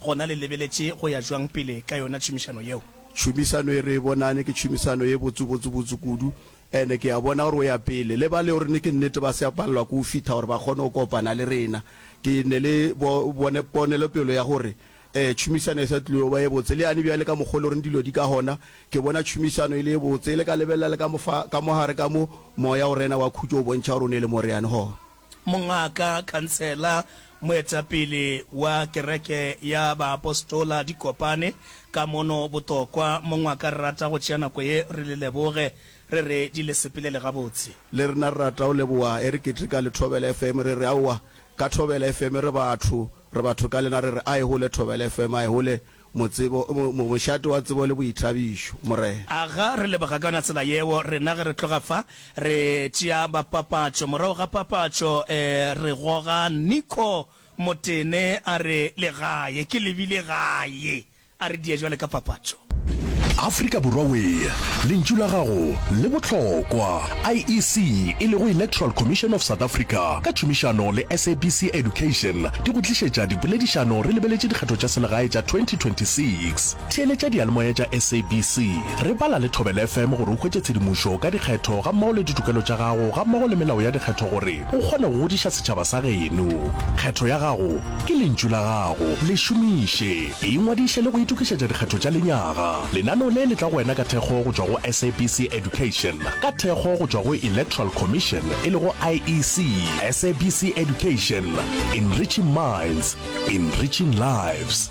Gona le lebeletše go ya bjang pele ka yona tšhomišano yeo? Tšhomišano ye re e bonane ke tšhomišano ye botse, botse, botse kudu. Ene ke a bona gore o ya pele. Le ba leo re ne ke nnete ba se a palelwa ke go fihla gore ba kgone go kopana le rena. Ke ne le bo, bone, ponelopelo ya gore ee, tšhomišano e sa tlile go ba ye botse. Le yane bjale ka mokgwa o loreng dilo di ka gona, ke bona tšhomišano e le ye botse. E le ka lebelela le ka mofa, ka mo gare ka mo, Moya o Rena wa khutšo o bontšha gore o ne le mo re yang gona. Mongaka, khansela, moetapele wa Kereke ya Baapostola di kopane ka mono botokwa, mongwe a ka rata go tšea nako ye re le leboge, re re di le sepelele gabotse? Le rena re rata go leboga, e re keteka le Thobela FM, re re aowa ka Thobela FM re batho, re batho ka lena, re re a e hole Thobela FM, a e hole. Motsebo, mo, mošate wa tsebo le boithabišo, Morena. Aga re leboga ka yona tsela yeo, rena ge re tloga fa, re tšea ba papatšo. Morago ga papatšo, e, re goga Nico Motene a re le gae. Ke lebile gae. A re die jwale ka papatšo. Afrika Borwa Wee, Lentšu la Gago le Bohlokwa! IEC, e lego Electoral Commission of South Africa, ka tšhomišano le SABC Education, di go tlišetša dipoledišano re lebeletše dikgetho tša selegae tša 2026. Theeletša diyalemoya tša SABC, re bala le Thobela FM gore o hwetše tshedimošo ka dikgetho gammogo le ditokelo tša gago gammogo le melao ya dikgetho gore o kgone go godiša setšhaba sa geno. Kgetho ya gago ke lentšu la gago, le šomiše! Ingwadiše le go itokišetša dikgetho tša lenyaga. Lenaneo le le tla go wena ka thekgo go tšwa go SABC Education, ka thekgo go tšwa go Electoral Commission e lego IEC. SABC Education, Enriching Minds, Enriching Lives.